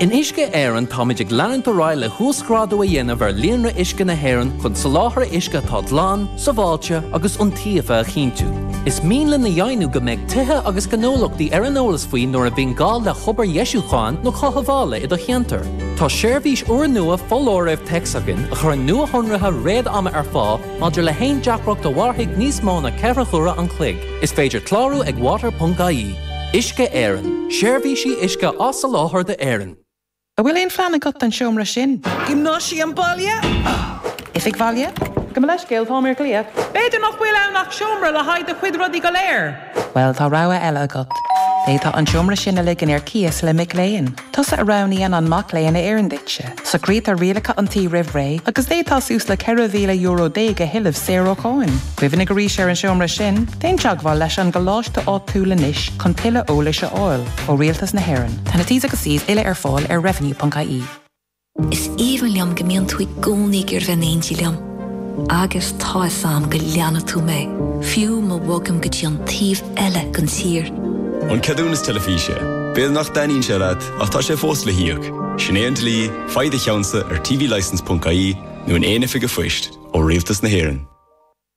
In Uisce Éireann táimid ag leanúint ar aghaidh le huasghrádú a dhéanamh ar líonra uisce na hÉireann chun soláthar uisce atá glan, sábháilte agus iontaofa a chinntiú. Is mian linn a dheimhniú go mbeidh tithe agus gnólachtaí ar an eolas faoi nuair a bhíonn gá le hobair dheisiúcháin nó chothabhála i do cheantar. Tá seirbhís úrnua foláirimh téacs againn a chuireann nuashonruithe réad-ama ar fáil maidir le haon deacracht a mhairfidh níos mó ná ceithre huaire an chloig. Is féidir clárú ag water.ie. Uisce Éireann, Seirbhísí uisce á soláthar d'Éirinn. An bhfuil aon phlean agat don seomra sin? Gymnasium baile? Oifig bhaile? Gabh mo leithscéal, tá mé ar ghlaoch. B'fhéidir nach bhfuil ann ach seomra le haghaidh do chuid rudaí go léir? Bhuel, tá rogha eile agat. D'fhéadfá an seomra sin a ligean ar cíos le mac léinn. Tusa a roghnaíonn an mac léinn a oireann duitse. Socraítear rialacha an tí roimh ré, agus d'fhéadfá suas le €4,000 déag a thuilleamh saor ó cháin. Cuimhnigh arís ar an seomra sin, déan teagmháil leis an gcoláiste áitiúil anois chun tuilleadh eolais a fháil ó Rialtas na hÉireann. Tá na T's agus C's uile ar fáil ar revenue.ie. Is aoibhinn liom go mbíonn tú i gcónaí ag iarraidh bheith in éindí liom. Agus tá fhios a'm go leanfaidh tú mé, fiú má bhogaim go dtí an taobh eile den tír. An ceadúnas teilifíse. B'fhéidir nach dtaitníonn sé leat, ach tá sé fós le híoc. Sin é an dlí, faigh do cheannsa ar tvlicence.ie nó in aon oifig a' phoist, ó Rialtas na hÉireann.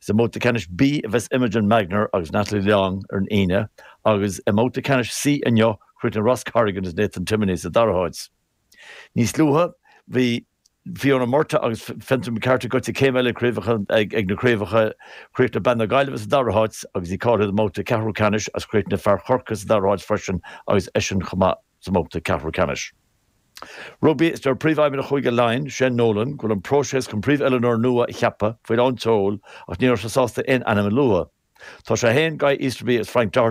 Is i mbabhta ceannais B a bheas Imogen Magner agus Natalie Long ar an Aoine agus i mbabhta ceannais C inniu chríochnaigh Ross Corrigan agus Nathan Timoney sa dara háit. Níos luaithe bhí Fiona Murtagh agus Fintan McCarthy goitse céim eile chun cinn ag na craobhacha, chríochnaigh bean na Gaillimhe sa dara háit agus í cáilithe don mbabhta ceathrú ceannais agus chríochnaigh fear Chorcaí sa dara háit freisin agus eisean chomh maith. sa mbabhta ceathrú ceannais. Rugbaí, deir Príomhfheidhmeannach Chúige Laighean, Shane Nolan, go bhfuil an próiseas chun príomhoiliúnóir nua a cheapadh faoi lán tseoil ach ní raibh sé sásta aon ainm a lua. Tá sé féin, Guy Easterby agus Frank Doherty,